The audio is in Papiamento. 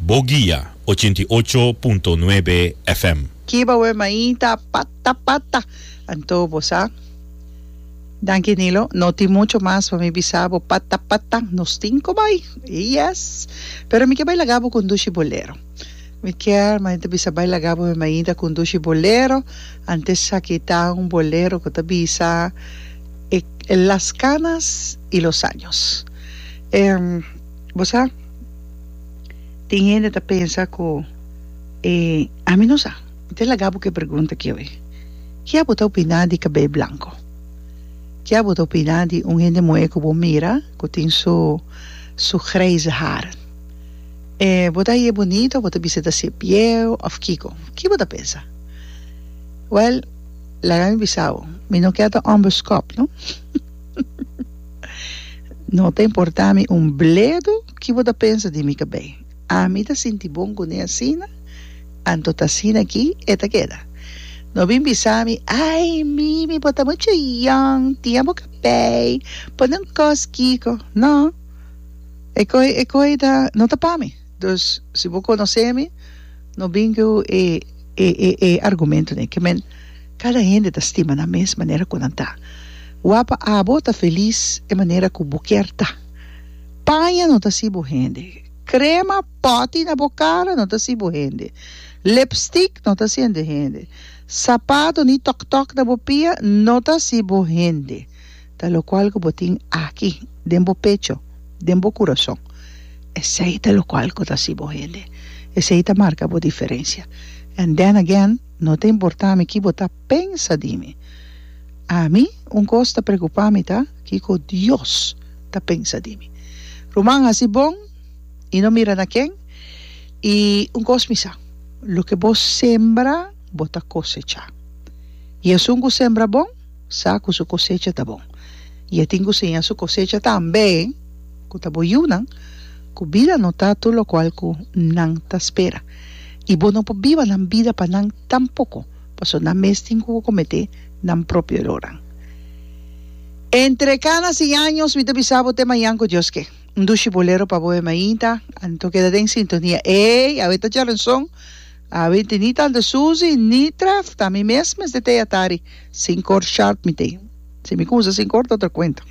Bo guia ochenta i ocho punto nuebe FM. Kiba we maí ta pata pata. Anto bo sa. Danki Nilo, no tin mucho mas pa mi bisa bo pata pata, nos tin cu bay. Yes! Pero mi kier bay laga bo conduci bolero. Mi kier m'a ta bisa bay laga bo we maí ta conduci bolero, antes a kita un bolero cu ta bisa e, Las canas y los años. E. Bo sa, tin hende ta pensa ku e ami no sa. Mi ta laga bo ku e pregunta aki awe, Ke bo ta opiná di kabel blanko? Ke bo ta opiná di un hende muhé ku bo mira ku tin su su grijze har? E bo ta hañ'é bunito? Bo ta bisa ta ser bieu òf kiko? Ki bo ta pensa? Wèl, laga mi bisa bo, mi no ke ta òmber skòp, no. No ta importa mi un bledo ki bo ta pensa di mi kabei. Ami ta sinti bon kuné asina, anto ta asina aki e ta keda. No bin bisa mi, Ai, Mimi, bo ta mucha yòn, tin abo kabei, pon den un kos kiko. No. E koi, e koi ta, no ta pa mi. Dus, si bo konosé mi, no bin ku e, e, e, e argumentonan. Ke men. Kada hende ta stima nan mes manera ku nan ta. Wapa abo ta felis e manera ku bo kier ta. Paña no ta si bo hende. Krema poti na bo kara no ta si bo hende. Lipstik no ta siente hende. Sapato ni tòk-tòk na bo pia no ta si bo hende. Ta lokual ku bo tin aki den bo pecho, den bo kurason. Esei ta lokual ku ta si bo hende. Esei ta marka bo diferensia. And then again. No ta importá mi ki bo ta pensa di mi. Ami, un kos ta preokupá mi ta kiko Dios ta pensa di mi. Ruman hasi bon i no mira na ken, i un kos mi sa, loke bo sembra bo ta kosechá. I esun ku sembra bon, sa ku su kosecha ta bon, i e tin ku siña su kosecha tambe ku ta bo yunan ku bida no ta tur lokual ku nan ta spera. i bo no por biba nan bida pa nan tampoko, pasobra nan mes tin ku kometé nan propio eroran. Entre kana si años mi ta bisa bo te mañan ku Dios ke. Un dushi bolero pa bo e mainta, anto keda den sintonia. Ey, awe ta charanson, awe tin ni tante Suzy, ni Tref, ta mi mes mester te yatari, sin kor sharp mi te. Si mi kumsa sin kor ta otro kuento.